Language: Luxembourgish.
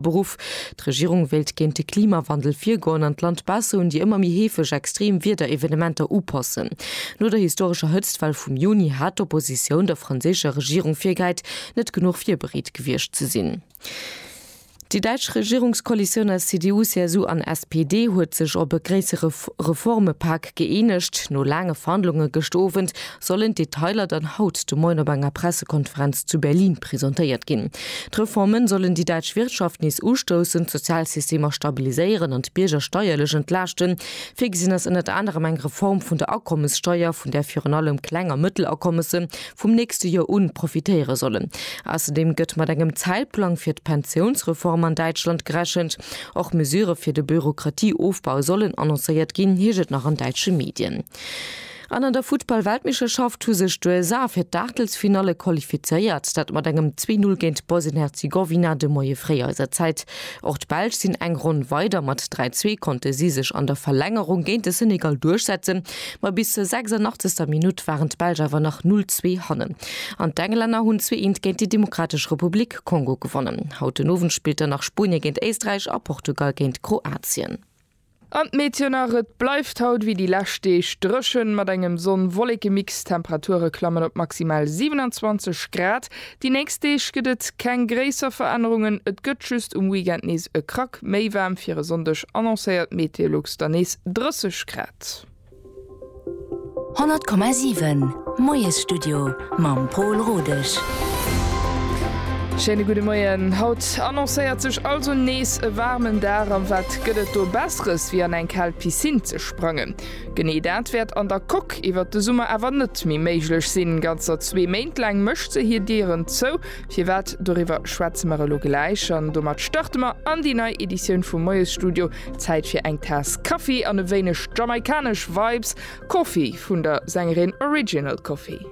Beruff. D'Regierung wéilt géint de Klimawandel virgoen an d'Land besser un déi ëmmer méi heefeg extreem Wiederevenementer upassen. No der historescher Hëtztwell vum Juni hat d'Oppositioun der franséischer Regierung virgehäit, net genuch virbereet gewiescht ze sinn. Déi däitsch Regierungskoalitioun aus CDU, CSU an SPD huet sech op e gréissere Reformepak gëeenegt. No laange Verhandlunge gëscht Owend sollen d'Detailer dann haut de Moien op enger Pressekonferenz zu Berlin presentéiert ginn. D'Reforme sollen déi däitsch Wirtschaft nees ustoussen, d'Sozialsystemer stabiliséieren an d'Bierger steierlech entlaaschten. Virgesinn ass ënnert anerem eng Reform vun der Akommessteier, vun där virun allem Kleng a Mëttelakommësse vum nächste Joer u profitéiere sollen. Ausserdeem gëtt mat engem Zäitplang fir d'Pensiounsreform an Däitschland gerechent. Och Mesure fir de Bürokratieofbau sollen annoncéiert ginn, heescht et nach an däitsche Medien. An an der Futtball-Weltmeeschterschaft hu sech d'USA fir d'Aachtelsfinalle qualifizéiert, dat mat engem 2, 0 géint Bosnien-Herzegowina de Moie fréi eiser Zäit. Och d'Belsch sinn eng Ronn weider, mat 3, 2 konnte si sech an der Verlängerung géint de Senegal duerchsetzen, ma bis zur 86. Minutt waren d'Belsch awer nach 0, 2 hannen an d'Englänner hunn 2, 1 géint déi Demokratesch Republik Kongo gewonnen. Haut den Owend spillt dann nach Spuenie géint Éisträich a Portugal géint Kroatien. An d'Meteon nach, et bleift haut wéi déi lescht Deeg dréchen, mat engem Sonn-Wolleke-Mix. D'Temperature klammen op maximal 27 Grad. Déi nächst Deeg gëtt et keng gréisser Verännerungen, et gëtt just um Weekend nees e Krack méi waarm. Fir e Sonndeg annoncéiert d'Meteolux dann nees 30 Grad. 100,7 Moiesstudio mam Pol Rodesch. Schéine gudde Moien. Haut annoncéiert sech also nees e waarmen Dag. An wat gëtt et do Besseres wéi an eng kal Piscine ze sprangen. Genee dat wäert an der Coque iwwert de Summer awer net méi méiglech sinn. Ganzer zwee Méint laang mécht se hir Dieren zou. Firwat? Doriwwer schwätze mer elo gläich an domat starte mer an déi nei Editioun vum Moiesstudio. Zäit fir eng Taass Kaffi an e wéineg jamaikanesch Vibes, Coffee vun der Sängerin Original Coffee.